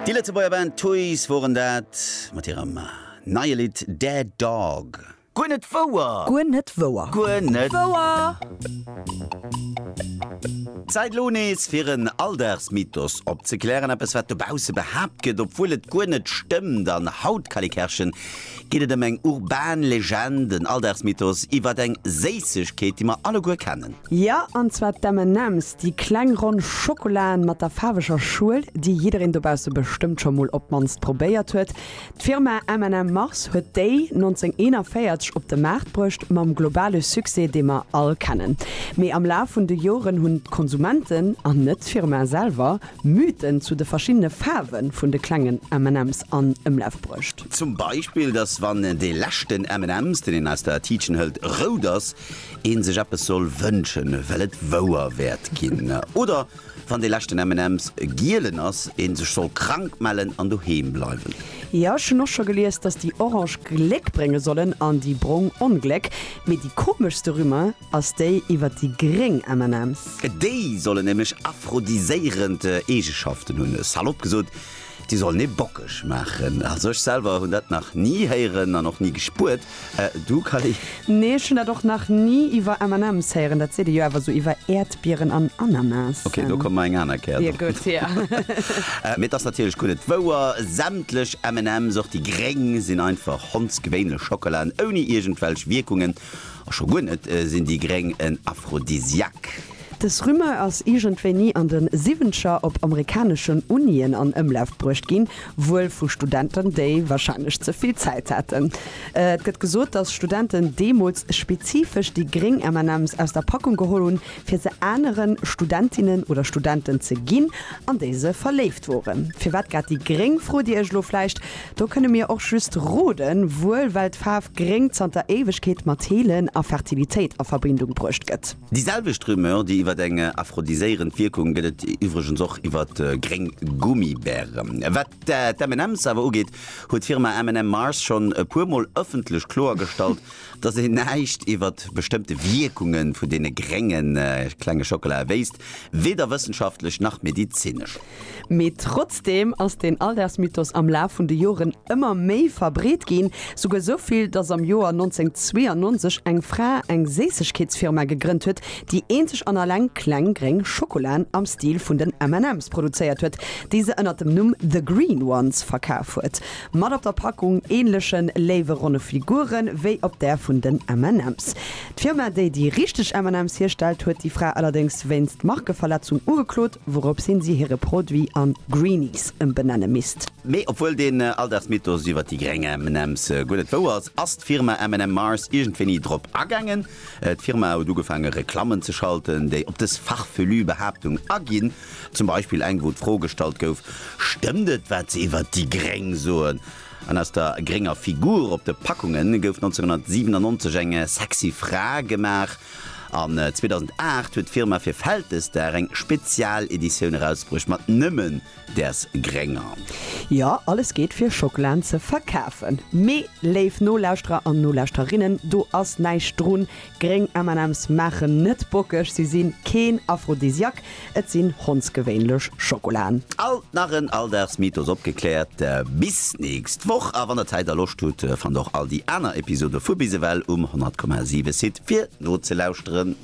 Déi Lëtzebuerger Band Toys woren dat mat hirem neie Lidd Dead Dog. Guer net wouer! Guer net wouer! Guer net wouer! Zäit elo nees fir en Alldagsmythos opzeklären, eppes wat dobausse behaapt gëtt, obwuel et guer net stëmmt. An Haut Calikerchen geet et ëm eng urban Legend, en Alldagsmythos iwwert eng Séissegkeet, déi mer alleguer kennen. Jo, an zwar d'M&M's, déi kleng ronn Schokolaen mat der faarweger Schuel, déi jiddereen dobausse bestëmmt scho mol op d'mannst probéiert huet. D'Firma M&M Mars huet déi 1941 op de Maart bruecht, mam globale Succès, dee mer all kennen. Mee am Laf vun de Joren hunn d'Konsumenten, an net d'Firma selwer, Mythen zu de verschiddene Faarwe vun de klengen M&M's an Ëmlaf bruecht. Zum Beispill, dass wann dee leschten M&M's, deen een aus der Tiitchen hëlt, rout ass, een sech eppes soll wënschen, well et wouer wäert ginn, oder wann dee leschten M&M's gielen ass, een sech soll krank mellen an doheem bleiwen. Jo, ech hunn och scho gelies, dass déi orange Gléck brénge sollen an déi brong Ongléck, mee déi komeschste Rumeur ass déi iwwert déi gréng M&M's. Déi sollen nämlech aphrodisiéierend Eegeschaften hunn, salopp gesot. Déi sollen ee bockeg maachen. Also ech selwer hunn dat nach ni héieren an och ni gespuert. Du Kally? Nee, ech hunn dat och nach ni iwwer M&M's héieren. Dat seet ee jo awer sou iwwer Äerdbieren an Ananasen. Ok, do komme mer eng aner Kéier drop. Gutt, hier. Mee et ass natierlech gutt et wouer, Sämtlech M&M's, och déi gréng, sinn einfach hondsgewéinlech Schockela ouni iergendwelch Wierkungen. A scho guer net sinn déi Gréng en Aphrodisiaque. Dës Rumeur ass iergendwéini an de Siwwenzeger op amerikaneschen Unien an Ëmlaf bruecht ginn, wuel vu Studenten, déi warscheinlech ze vill Zäit haten. Et gëtt gesot, datt Studenten deemools spezifesch déi gréng MNMs aus der Packung geholl hunn, fir se anere Studentinnen oder Studenten ze ginn, an déi se verléift woren. Firwat grad déi gréng, frot Dir Iech elo vläicht. Do kënne mir och just roden, wuel well d'Faarf Gréng zanter Éiwegkeet mat Heelen a Fertilitéit a Verbindung bruecht gëtt. Déi selwecht Rumeur, déi iwwer eng aphrodiséierend Wierkung, gëtt et iwwregens och iwwer gréng Gummibären. Wat d'M and M's awer ugeet, huet d'Firma M and M Mars schonn e puer Mol ëffentlech kloergestallt, datt een näischt iwwer bestëmmte Wierkunge vun deene grénge klenge Schockelae wéisst, weder wëssenschaftlech nach medezinesch. Mee trotzdeem ass den Alldaagsmythos am Laf vun de Joren ëmmer méi verbreet ginn, souguer sou vill, dass am Joer 1992 eng Fra eng Séissegkeetsfirma gegrënnt huet, déi eenzeg an alleng kleng gréng Schokolaen am Stil vun den M&M's produzéiert huet, déi se ënnert dem Numm The Green Ones verkaf huet, mat op der Packung änleche léiwe ronne Figuren, wéi op där vun den M&M's. D'Firma, déi déi richteg M&M's hierstellt, huet déi Fra allerdéngs wéinst Markeverletzung ugeklot, wourops hin si hire Produit an Greenies ëmbenenne misst. Mee obwuel deen Alldagsmythos iwwer déi gréng M&M's guer net wouer ass, ass d'Firma M&M Mars iergendwéini drop agaangen. D'Firma huet ugefaange Reklammen ze schalten, déi op dës farfelu Behaaptung aginn. Zum Beispill eng, wou d'Fro gestallt gouf, Stëmmt et, wat se iwwer déi Gréng soen? An aus der grénger Figur op de Packunge gouf 1997 eng sexy Fra gemaach. An 2008 huet d'Firma fir Vältesdag eng Spezialeditioun erausbruecht mat nëmme däers grénger. Jo, alles geet fir Schokelaen ze verkafen. Mee léif Nolauschterer an Nolauschterinnen, do ass näischt drun. Gréng MNMs maachen net bockeg, si sinn keen Aphrodisiak, et sinn hondsgewéinlech Schokolaen. Alt nach en Alldagsmythos opgekläert. Bis nächst Woch a wann der Zäit a Loscht hutt, fannt och all déi aner Episode vu Bis ewell um 100,7 Site fir nozelauschteren.